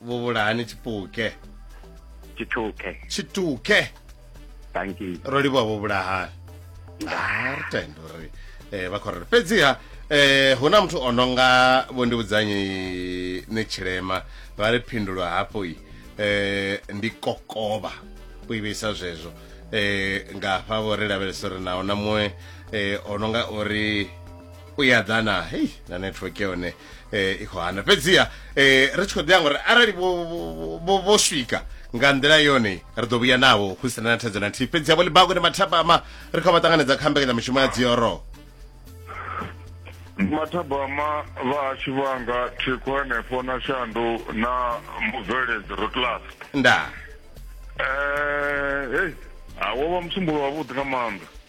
vhuvhulahani tshipuke tshithuke tshituke thank you ro livhuwa vhuvhulahani Ah, ri tenda uri eh, vha khou rera fhedziha eh, hu na muthu o no nga vho ndi vhudzanyi ni tshilema vha ri phindulo hafho i eh, ndi kokovha u i vheisa zwezwo eh, nga hafha vho ri lavhelesa uri naho na muṅwe eh, o no nga uri u ya ḓana hei na network yone eh, i khou hana fhedziha eh, ri tshi khou ḓiya ngori arali vho- vho- vho vho swika nga nḓila yone ri ḓo vhuya navho hu sina na thaidzo na nthihi fhedziha vho libago ni mathapama ri khou vha ṱanganedza kha mbekanyamushumo ya dzioro mathabama vhahashu vhanga thikho henefho na shandu na mubveledzi rotlas ndaa um hei awo vha musumbulo wavhuḓi nga maanḓa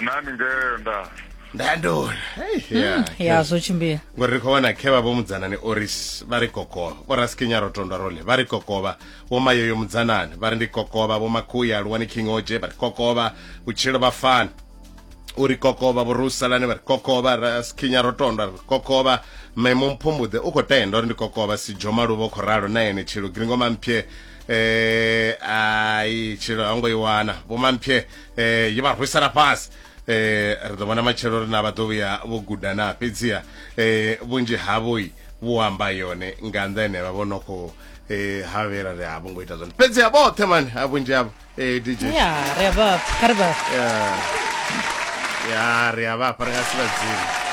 nani ngeo nda ndandona hmm, ya zwo tshimbila ngori ri khou vhona khe vha vho mudzanani oris vha ri kokovha vho raskinya ro tondwa role vha ri kokovha vho mayoyo mudzanani vha ri ndi kokovha vho makhuya luwani king oje vha ri kokovha vhutshilo vha fani u ri kokovha vhurusalani vha ri kokovha raskinya ro tondwa ri kokovha memo mphumbuḓe u khou tenda uri ndi kokovha si dzhoma luvho khou ralo na ene tshilo gringo mamphye eh ai tshilo ha ngo i wana vho mamphye eh ye vha rwisela fhasi eh ri ḓo vhona matshelo ri na vha ḓo vhuya vho guda na fhedziha eh vhunzhi havho vhu amba yone nga nnḓa ene vha vho no khou eh ha vhera ri a vho ngo ita zwone fhedziha vhoṱhe mani a vhunzhi havho eh DJ ya ri a vha kha ri vha ya ri a vha fha ri nga si vha dzini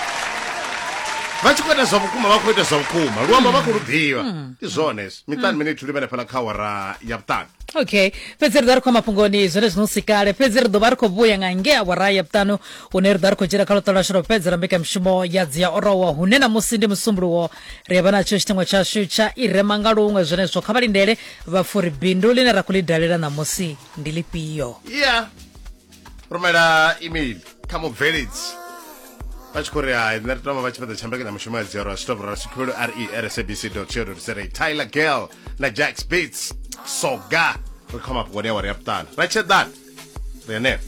vha tshi khou ita zwa vhukuma vha khou ita zwa vhukuma luamba vha khou lu ḓivha hmm. ndi zwone miṱani mine ithuli vha lefhala kha wara ya vhuṱanu okay fhedzi ri ḓa ri khou mafhungoni zwone zwino si kale fhedzi ri ḓo vha ri khou vhuya nga ngea wara ya vhuṱanu hune ri ḓa ri khou dzhena kha luṱo lwashu lwa fhedzela mbekanyamushumo ya dzi ya orowa hune namusi ndi musumbuluwo ri a vha natsho tshitengo tshashu tsha i rema nga luṅwe zwenezwo kha vha lindele vhafuri bindu line ra khou ḽi dalela namusi ndi lifhio ya rumela email kha mubveledzi vha tshi khou ri hai nṋe ri tama vha tshi fhedza tshambekanyo mushumo ya dzero a switovho ra sikhulu re rsabc co za tyler girl na jacks beats soga ri khoma vhukoni awara ya vhuṱanu ra tshedani ri henefho